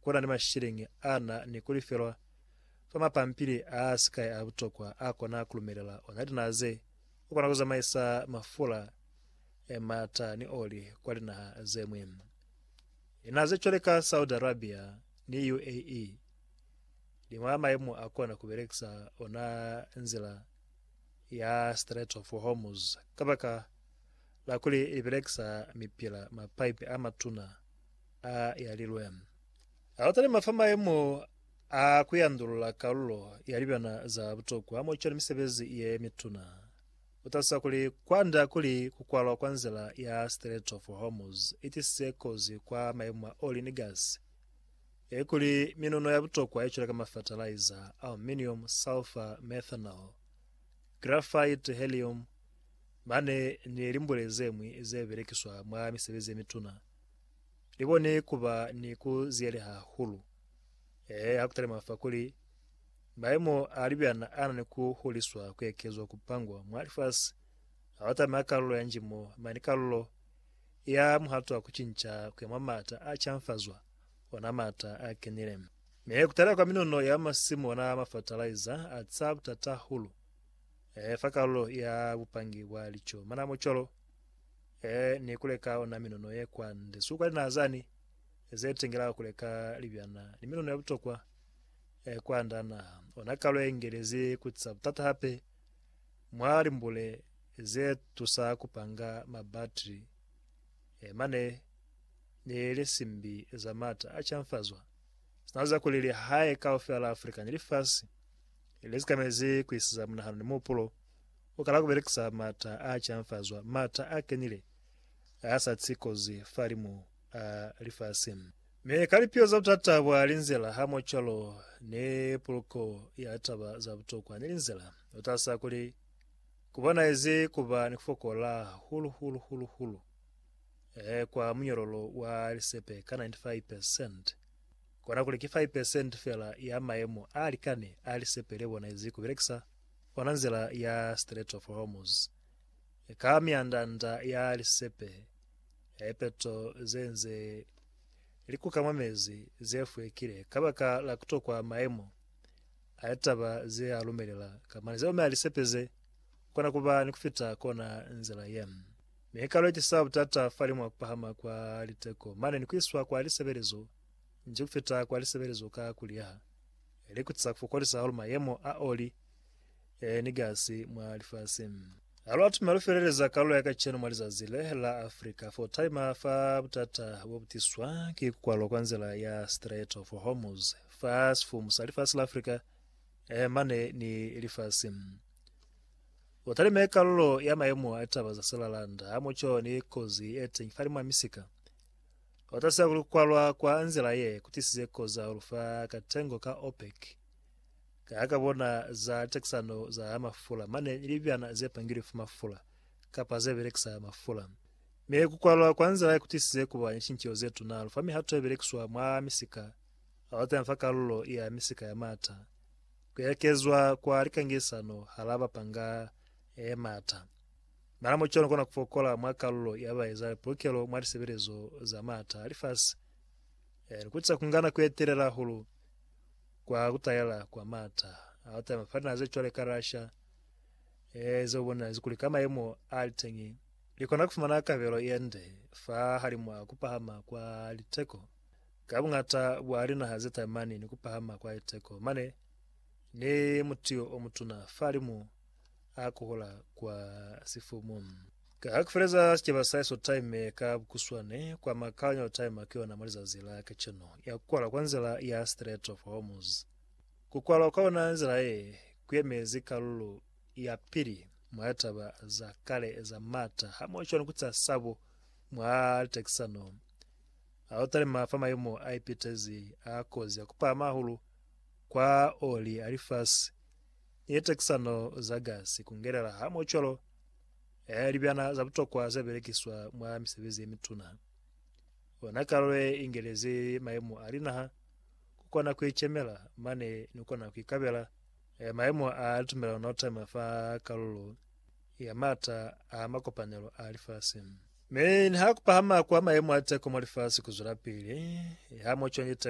ku na ni masheleñi a na ni ku lifelwa fa mapampili a si kai a butokwa a kona ku lumelela ona linaa ze ku kona ku zamaisa mafula, mata ni oli kwa linaha ze ñwi. Linaha ze cwale ka Saudi Arabia ni UAE li mwa maemo a kona ku belekisa ona nzila ya Strait of Hormuz kabaka la kuli li belekisa mipila mapaipi a matuna A yalilwe. A lata lima fa maemo a ku yandulula kalulo ya libana za butokwa mwa cwale misebezi ye mituna. U talusa kuli, Kwanda kuli ku kwalwa kwa nzila ya Strait of Hormuz i tisize kozi kwa maemo a oli ni gasi, ilikuli minuno ya butokwa ye cwale ka mafatalaiza, aluminium, sulfur, methanol, graphite, helium, mane ni limbule ze ñwi ze belekiswa mwa misebezi ye mituna. li koni ku ba ni ku ziyeleha hahulu ee ha ku talima fa kuli maimo a libyana a na ni ku huliswa, ku ekezwa, ku pangwa mwa lifasi ha u tamela kalulo ya njimo mane kalulo ya muhato wa ku cinca ku ya mwa maata a canfazwa, ona maata a kenile. Mi ku talila kwa minuno ya masimu ona mafatalaiza a ca butata hahulu ee fa kalulo ya bupangi bwa lico. Mana mo cwalo? Ee, ni kuleka ona minono ye kwande, suka linaa zani ze tengelaho kuleka libyana ni minono ya butokwa e kwanda naha. Ona kalo ye ngelezi ku tsa butata hape mwa limbule ze tusa ku panga mabatri e mane ni lisimbi za mata a canfazwa. Sina za kuli lihae kaufela la Afrika ni lifasi le sikamezi ku isiza munahano ni muhupulo U kala ku belekisa m'ata a canfazwa, m'ata a kenile a a sa si kozi fahalimu a lifasi. Mi ka lipiho za butata bwa linzila, hamo cwalo ni puluko ya taba za butokwa ni linzila, u tahisa kuli ku bonahezi ku ba ni ku fokola hahulu, hulu, hulu, hulu, e, kwa munyololo wa lisepe ka 95 percent, kona kuli ki 5 percent fela ya mayemo a likani a lisepe le bonahezi ku belekisa. Ona nzila ya Strait of Hormuz ka mianda-nda ya lisepe ya lipeto ze nze li kuka mwa mezi ze fwekile kabaka la kutokwa maemo a litaba ze a lumelela. Ka mane ze omela lisepe ze kona kuba ni kufita kona nzila ye. Mi ni ka lu ecisa butata fali mwa kupahama kwa liteko mane ni kuiswa kwa lisebelezo nji kufita kwa lisebelezo ka kuliyeha. likutisa ku fokolisa hahulu mayemo a oli ni gasi mwa lifasi. Ha lu atume lu feleleza kalulo ya kacenu mwa lizazi le la Africa fo taima fa butata bo bu tiswa ki ku kwalwa kwa nzila ya Strait of Hormuz fa sifumu sa lifasi la Africa mane ni lifasi. U talime kalulo ya mayemo a litaba za silalanda hamoco ni kozi ye teñi fa limwa misika Kotasa kuli kukwalwa kwa nzila ye kutisize koza hulu fa katengo ka OPEC ka ha kabona za takisano za mafula mane ni libyana ze pangilwe fa mafula kapa ze belekisa mafula. Mi kukwalwa kwa nzila ye kutisize kuba ni cinceho ze tuna hulu fa mihato ye belekiswa mwa misika hahulu teñi fa kalulo ya misika ya maata, ku ekezwa kwa likangisano hala bapanga ye maata, Nala mucwalo ni kona ku fokola mwa kalulo ya ba eza lipulukelo mwa lisebelezo za maata a lifasi. Ni kutisa ku nga nako ye telela hahulu kwa ku talela kwa maata a ku talima fa dinaha ze cwale ka Russia, ze u bonelazi kuli ka mayemo a li teñi, li kona ku fumana kabelo ye nde fa halimu a ku pahama kwa liteko ka buñata bwa linaha ze talimani ni ku pahama kwa liteko mane ni mutiyo o mutuna fa limu a kokola kwa sifumu. Ka ha ku feleza sicaba sa Iso Time ka bukuswane, kwa ma Colonial Time ki ona mwa lizazi la kacenu, ya ku kwala kwa nzila ya Strait of Hormuz. Ku kwalwa kwa ona nzila ye, ku yemezi kalulo ya pili mwa litaba za kale za maata hamoho cwalo ku ca sabo mwa litekisano, a lu talima fa mayemo a ipitezi a kozi ya ku pahama hahulu kwa oli a lifasi Ye tekisano za gasi kungelela ha mocolo ya libyana za butokwa ze belekiswa mwa misebezi ye mituna. Ona kalo ye ingelezi mayemo a linaha ku kona ku icemela mane ni ku kona ku ikabela mayemo a tumelano na utama fa kalulo ya maata a makopanelo a lifasi. Mi niha kupahama kwa mayemo a teko mwa lifasi kuzwelapili, ha mocolo ni teko